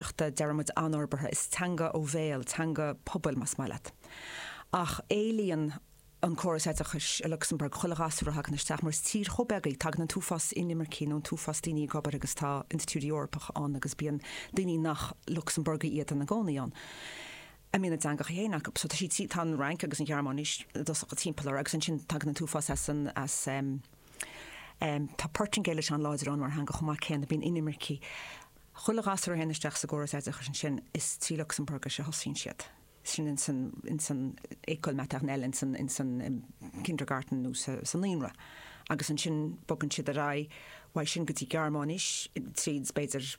chleachtadh, deir muid anfhorbartha, is teanga ó bhéal, teanga pobail, más maith leat. Ach éilíonn an córas oideachais i Lucsamburg chuile ghasúr a thagann isteach, mar is tír chomh beag í, tagann an t-uafás inimircigh nó an t-uafás daoine ag obair, tá institiúidí Eorpacha ann agus bíonn daoine nach Lucsamburgaigh iad ina gcónaí ann a mbíonn a dteangacha féin acu. So tá siad, tá an Fhrainc agus an Ghearmáinis i dtosach timpeall orthu agus ansin tagann an t-uafás as an, as eh, tá Portaingéilis an-láidir ann mar theanga chomh maith céanna, bíonn inimircigh, Chuile ghasúr a théann isteach sa gcóras oideachais ansin, is trí Lucsamburgais a thosaíonn siad. Sin ins an, ins an école maternelle, ins an, ins an kindergarten nó sa, sa naíonra. Agus ansin bogann siad ar aghaidh uaidh sin go dtí Gearmáinis, tríd b'fhéidir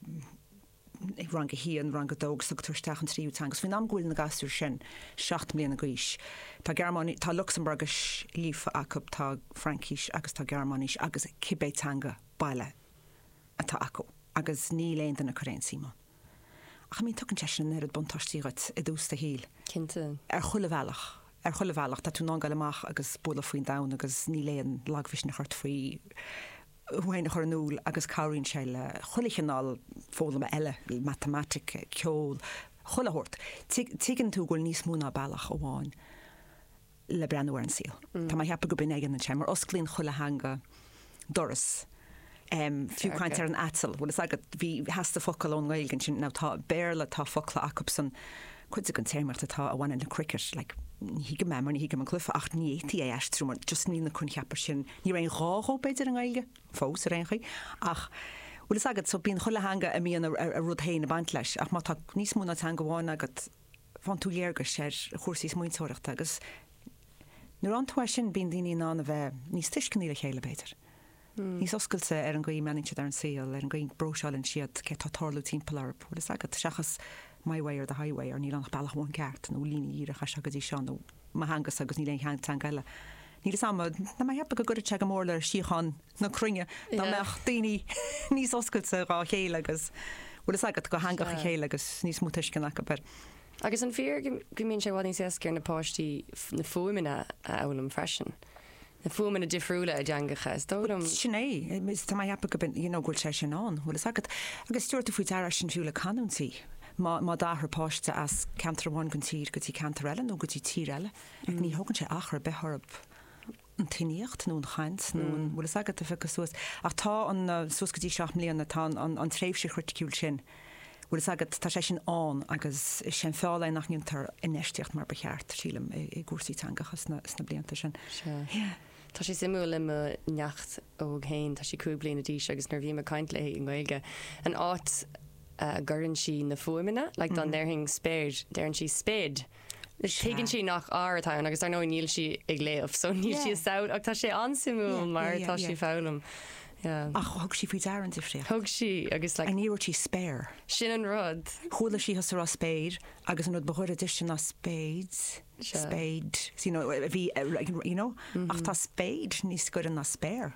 rang a haon, rang a dó agus tugtar isteach an tríú teanga. Agus faoin am go bhfuil na gasúir sin seacht mbliana d'aois, tá Gearmáinís, tá Lucsamburgais líofa acu, tá Fraincis agus tá Gearmáinis agus cibé teanga baile. atá acu agus níl aon duine ag cur aon suim ann. Ach I mean, tugann sé sin an oiread buntáistí dhuit i dtús do shaoil. Cinnte. Ar chuile bhealach. Ar chuile bhealach. Tá tú in ann goil amach agus bualadh faoin domhan agus níl aon lagmhisneach ort faoi thú féin a chur in iúl agus cabhraíonn sé le chuile chineál foghlama eile, matamaitic, ceol, chuile shórt. Tuigeann tú go bhfuil níos mó ná bealach amháin. le breathnú ar an saol. Tá mé a cheapadh go mbíonn ag an an tsean mar osclaíonn chuile theanga doras. Fiú caint ar an aiteal, bhfuil fhios agat, bhí theastaigh focal i nGaeilge ansin, ná tá Béarla, tá focla acusan, cuid den téarmaíocht a bhaineann le cricket, like, ní thuigim é mar ní thuigim an cluife ach ní fhéadfaí é a aistriú mar just níl na coincheapa sin, níl aon ghá dhóibh b'fhéidir i nGaeilge, fós ar aon chaoi, ach bhfuil fhios agat, so bíonn chuile theanga, bíonn a rud féin ag baint leis ach má tá níos mó ná teanga amháin agat, faigheann tú léargas ar chúrsaí smaointeoireachta agus nuair a fhaigheann tú é sin bíonn daoine in ann a bheith níos tuisceanaí le chéile, b'fhéidir, níos oscailte ar an gcaoi a mbreathnaíonn siad ar an saol, ar an gcaoi a bpróiseálann siad céard atá ag tarlú timpeall orthu, bhfuil a fhios agat, seachas my way or the highway or níl ann ach bealach amháin ceart nó líne dhíreach as seo go dtí seo nó mo theanga-sa agus níl aon teanga eile. Níl a fhios a'm, tá mé a cheapadh go gcuirfead sé go mór le síocháin? na cruinne dá mbeadh daoine níos oscailte dhá chéile agus bhfuil fhios agat dho theangacha a chéile agus níos mó tuiscint acu ar. Agus an fíor go mbíonn sé i bhfad níos éasca ar na páistí na fuaimeanna a fhoghlaim freisin, na fuaimeanna difriúla i dteangacha, is dóigh liom. Sin é, tá mé a cheapadh go bhfuil, you know, go bhfuil sé sin ann, bhfuil fhios agat. Agus tabharfaidh tú faoi deara sin fiú le canúintí, má má d'athraigh páiste as ceantar amháin den tír go dtí ceantar eile nó go dtí tír eile, ní thógann sé achar ar bith orthu an tuiníocht nó an chaint nó an bhfuil fhios agat, a phiocadh suas. Ach tá an, suas go dtí seacht mbliana, tá an, an tréimhse chriticiúil sin, bhfuil fhios agat, tá sé sin ann agus is é an feall é nach ndéantar infheistíocht mar ba cheart, sílim, i, i gcúrsaí teangacha sna, sna blianta sin. Sea. Tá sé suimiúil le mo neacht óg féin, tá sí cúig bliana d'aois agus nuair a bhím ag caint léi i nGaeilge, an áit a gcuireann sí na fuaimeanna, like dá ndéarfainn spéir, deireann sí spade. Tuigeann sí nach r atá ann agus dar ndóigh níl sí ag léamh so níl sí ag samhlú ach tá sé an-suimiúil mar tá sí ag foghlaim. Ach thug sí faoi deara an difríocht. Thug sí agus like. Ní dúirt sí spare. Sin an rud. Chuala sí thusa ag rá spéir agus an rud ba ghaire dó sin ná spéid, spade, you know, a bhí, you know, ach tá spéid níos gaire ná spare.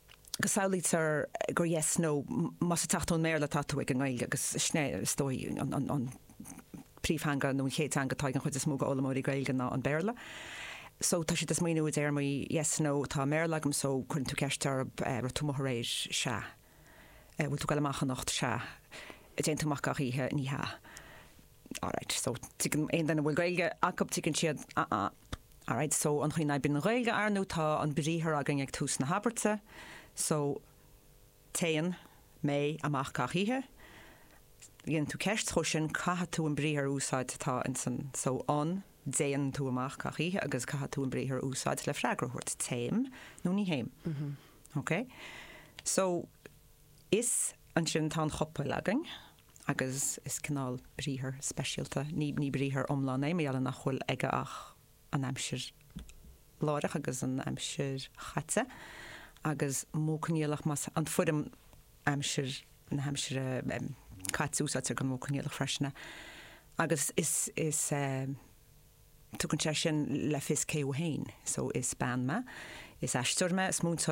go samhlaítear gur yes no más ag teacht ón mBéarla atá tú ag an nGaeilge agus sin é is dóigh an príomhtheanga nó an chéad teanga atá ag an chuid is mó d'fhoghlaimeoirí Gaeilge ná an Béarla so tá siad ag smaoineamh i dtéarmaí yes no atá i mBéarla againn so cuireann tú ceist orthu eh, raibh tú amuigh aréir? Sea. Eh, bhfuil tú ag goil amach anocht? Sea. An dtéann tú amach gach oíche? Ní hea. All right, so tuigeann aon duine a bhfuil Gaeilge acu, tuigeann siad, ah ah, all right, so an chaoi a n-oibríonn an Ghaeilge ar ndóigh tá an briathar againn ag tús na habairte, so téann, mé, amach gach oíche, má dhéanann tú ceist dhó sin, caithfidh tú an briathar a úsáid atá ins an, so an, dtéann, tú amach gach oíche agus caithfidh tú an briathar a úsáid le freagra a thabhairt, téim nó ní théim. Okay? So is ansin tá an chopail againn. agus is cineál briathar speisialta, ní briathar iomlán é, mar gheall ar nach bhfuil aige ach an aimsir láithreach agus an aimsir chaite, agus modh coinníollach, mar is an fhoirm aimsir na haimsire caite a úsáidtear don mhodh coinníollach freisin, agus is. tugann sé sin le fios cé thú féin, so is bean mé, is aisteoir mé, is múinteoir